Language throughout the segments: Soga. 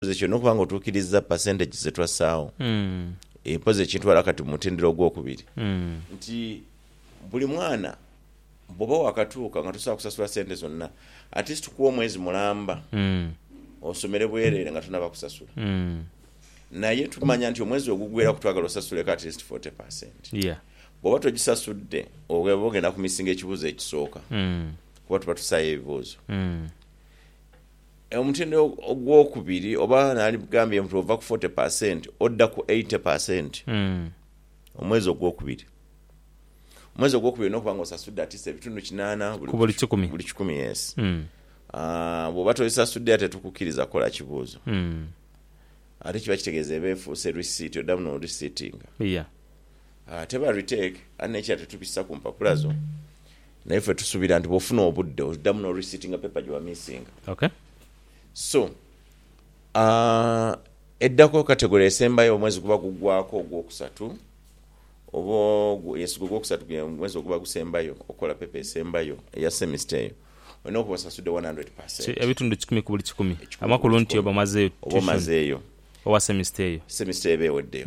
Nze kyona okuba nga otuukiriza percentages ze twassaawo, mpozi ekintwala kati mu mutendera ogw'okubiri, nti buli mwana bwoba wakatuuka nga tosobola kusasula sente zonna, at least tukuwa omwezi mulamba osomere bwerere nga tonaba kusasula. Naye tumanya nti omwezi oguggweraku twagala osasuleko at least forty percent. Bwoba togisasudde oba ogenda ku missinga ekibuuzo ekisooka kuba tuba tusaayo ebibuuzo. Omutindo ogwokubiri oba nandikugambye nti ova ku forty per cent odda ku eighty per cent omwezi ogwokubiri. Omwezi ogwokubiri olina okuba nga osasudde at least ebitundu kinaana ku buli kikumi. Yes. Bwoba tobisasudde ate tetukukkiriza kukola kibuuzo. Ate kiba kitegeeza eba efuuse receipt, oddamu no receiptinga. Teba retake aye nekira tetubisa ku mpapula zo naye fe tusubira nti bwofuna obudde odamu no receiptinga paper gye wamissinga. Okay. So eddako category esembayo omwezi guba gugwako ogwokusatu oba ogwo yes gwe gwokusatu gwe mwezi oguba gusembayo okola paper esembayo eya semester eyo olina okuba osasudde one hundred per cent. Ebitundu kikumi ku buli kikumi amakulu nti oba omazeyo tuition oba omazeyo owa semester eyo semester eba eweddeyo.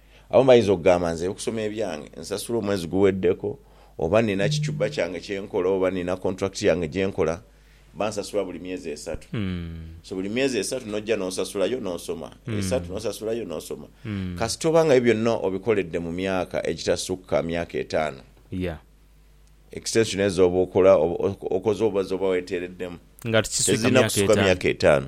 Abamu bayinza okugamba, Nze okusoma ebyange nsasula omwezi guweddeko, oba nina kichuba kyange kye nkola, oba nina kontulakiti yange gye nkola, bansasula buli myezi esatu. So buli myezi esatu n'oja n'osasula yo n'osoma, esatu n'osasula yo n'osoma. Kasita oba nga ebyo byonna obikoledde mu myaka egitasukka myaka etaano, extension ezo oba okola, okoze oba z'oba weeteereddemu, tezirina kusukka myaka etaano.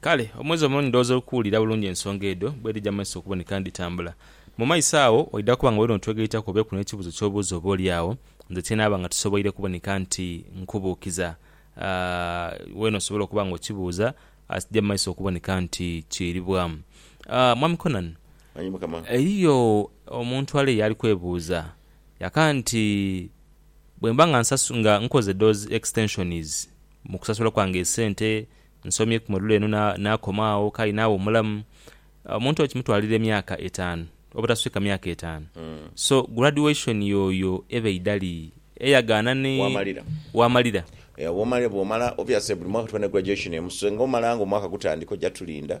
Kale, omwezi omuno ndhooza okuwulira bulungi ensonga edho bwedhija mu maiso okuboneka nidhitambula. Mu maiso agho oidha kuba nga oli n'otwegaitaku obeeku n'ekibuuzo ky'obuuza oboolyawo nze kyenaaba nga tisoboire kuboneka nti nkubuukiza. Weena osobola okuba nga okibuuza as kija mu maiso okuboneka nti kiiribwamu. Mwami Conan, Aye Mukama. eriyo omuntu ale y'ali kwebuuza yaka nti, Bwe mba nga nkoze those extensions Mu kusasula kwange esente, nsomye ku module eno naakoma agho k'aye naagha omulamu. Omuntu oyo kimutwalira emyaka etaanu obutaswika myaka etaanu. So graduation yoyo eba eidali eyagaana ni waamalira. Bwomala obviously buli mwaka tuba ne graduation emu so nga omalanga omwaka gutandika oja tulinda.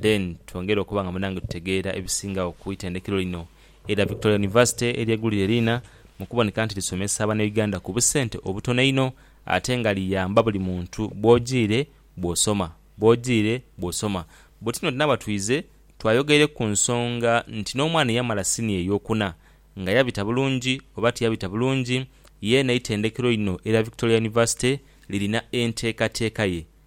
Then twongere okuba nga munange tutegeera ebisingagho ku itendekero lino erya Victoria University eryegulire liina mu kuboneka nti lisomesa Banauganda ku busente obutono einho ate nga liyamba buli muntu bw'ojiire bw'osoma bw'ojiire bw'osoma. Bwetutyo nti naaba twize twayogeire ku nsonga nti n'omwana eyamala siniya ey'okuna nga yabita bulungi oba tiyabita bulungi, yeena eitendekero lino erya Victoria University lirina enteekateeka ye.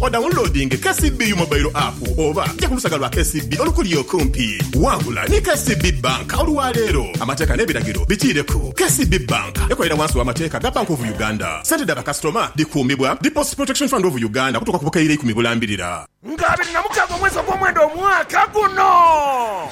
Odawunulodinge KCB U Mobile App oba ja ku lusaga lwa KCB olukuli okumpi. Wangula ni KCB Bank olwa leero. Amateeka n'ebiragiro bitiireku. KCB Bank ekolera wansi w'amateeka ga Bank of Uganda. Sente dha bakasitoma dhikuumibwa Deposit Protection Fund of Uganda okutuuka ku bukaire ikumi bulambirira. Nga abiri na mukaga omwezi ogw'omwenda omwaka guno.